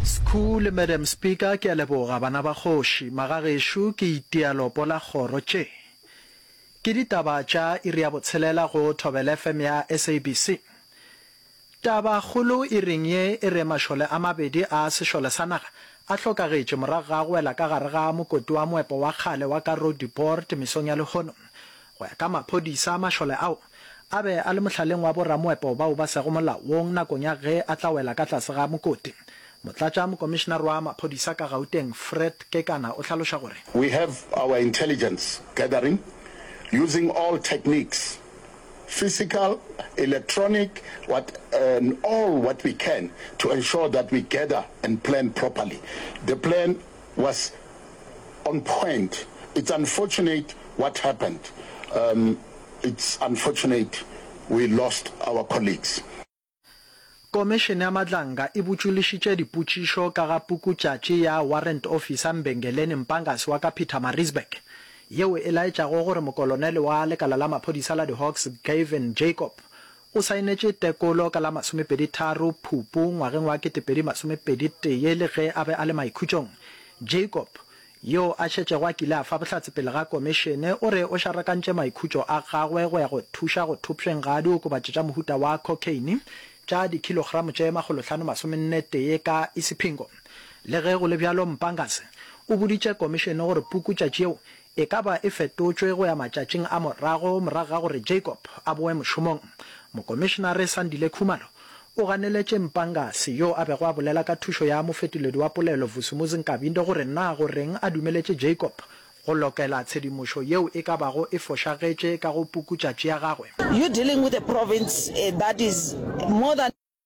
Skhoo le Madam Speaker, ke a leboga bana ba kgoši. Magagešo ke itia lopo la kgoro tše. Ke ditaba tša iri ya botshelela go Thobela FM ya SABC. Taba kgolo iring ye e re mašole a mabedi a sešole sa naga a hlokagetše morago ga go wela ka gare ga mokoti wa moepo wa kgale wa Karoo du Port mesong ya lehono. Go ya ka maphodisa, mašole ao a be a le mohlaleng wa boramoepo bao ba sego molaong nakong ya ge a tla wela ka tlase ga mokoti. Motlatša mokomišenare wa maphodisa ka Gauteng, Fred Kekana o hlaloša gore. We have our intelligence gathering using all techniques, physical, electronic, what and all what we can to ensure that we gather and plan properly the plan. was on point it's unfortunate what happened um it's unfortunate we lost our colleagues. Komešene ya Madlanga e botšolišitše dipotšišo ka ga pukutšatši ya Warrant Officer Mbengeleni Mpangasi wa ka Pietermaritzburg, yeo e laetšago gore mokolonele wa lekala la maphodisa la di-Hawks Gavin Jacob O saenetše tekolo ka la masomepedi tharo Phupu ngwageng wa ketepedi masomepedi tee le ge a be a le maikhutšong. Jacob, yo a šetšego a kile a fa bohlatse pele ga Komišene, o re o šarakantše maikhutšo a gagwe go ya go thuša go thopšweng ga diokobatši tša mohuta wa cocaine tša dikhilogramo tše makgolo hlano masomenne tee ka Isipingo. Le ge go le bjalo, Mpangase o boditše Komišene gore pukutšatši yeo e ka ba e fetotšwe go ya matšatšing a morago morago ga gore Jacob a boe mošomong. Mokomišenare Sandile Khumalo o ganeletše Mpangase, yo a bego a bolela ka thušo ya mofetoledi wa polelo Vusumuzi Nkabinde gore na go reng a dumeletše Jacob go lokela tshedimošo yeo e ka bago e fošagetše ka go pukutšatši ya gagwe. You dealing with a province that is more than.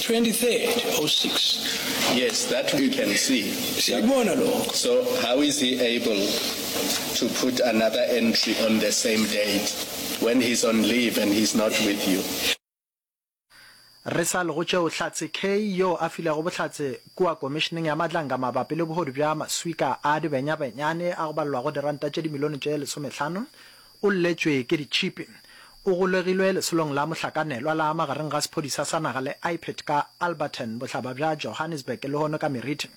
23rd, 06. Yes, that we can see. Siyakubona lokho. So how is he able to put another entry on the same date when he's on leave and he's not with you? Re sa lego tšeo, Hlatse Kay, yo a filego bohlatse kua Komišeneng ya Matlanka mabapi le bohodu bja maswika a dibenyabenyane a go balelwago diranta tše dimilione tše lesomehlano, O lletšwe ke ditšhipi. O golegilwe lesolong la mohlakanelwa la magareng ga sephodisa sa naga le IPID ka Alberton, bohlaba bja Johannesburg, lehono ka meriti.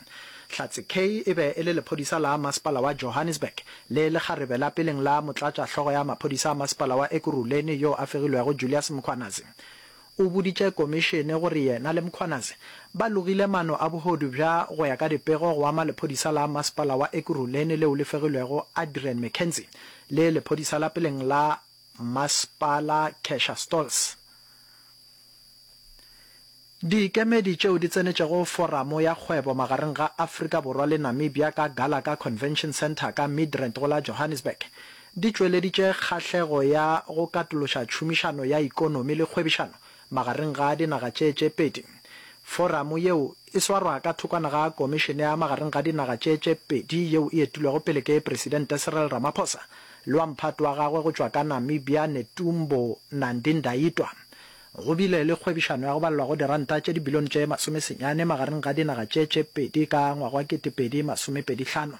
Hlatse Kaye e be e le lephodisa la masepala wa Johannesburg le lekgarebe la peleng la motlatšahlogo ya maphodisa a masepala wa Ekurhuleni yo a fegilwego Julius Mkhwanazi. O boditše komišene gore yena le Mkhwanazi ba logile mano a bohodu bja go ya ka dipego go ama lephodisa la masepala wa Ekurhuleni leo le fegilwego Adrian McKenzie le lephodisa la peleng la masepala Kesha Stolz. Dikemedi tšeo di tsenetšego foramo ya kgwebo magareng ga Afrika Borwa le Namibia ka Gallagher Convention Centre ka Midrand go la Johannesburg di tšweleditše kgahlego ya go katološa tšhomišano ya ikonomi le kgwebišano magareng ga dinaga tše tše pedi. Foramo yeo e swarwa ka thokwana ga Komišene ya Magareng ga Dinaga tše tše Pedi yeo e etilwego pele ke Presidente Cyril Ramaphosa le wa mphato wa gagwe go tšwa ka Namibia Netumbo Nandi-Ndaitwah. Go bile le kgwebišano ya go balelwa go diranta tše dibilione tše masome senyane magareng ga dinaga tše tše pedi ka ngwaga wa kete pedi masome pedi hlano.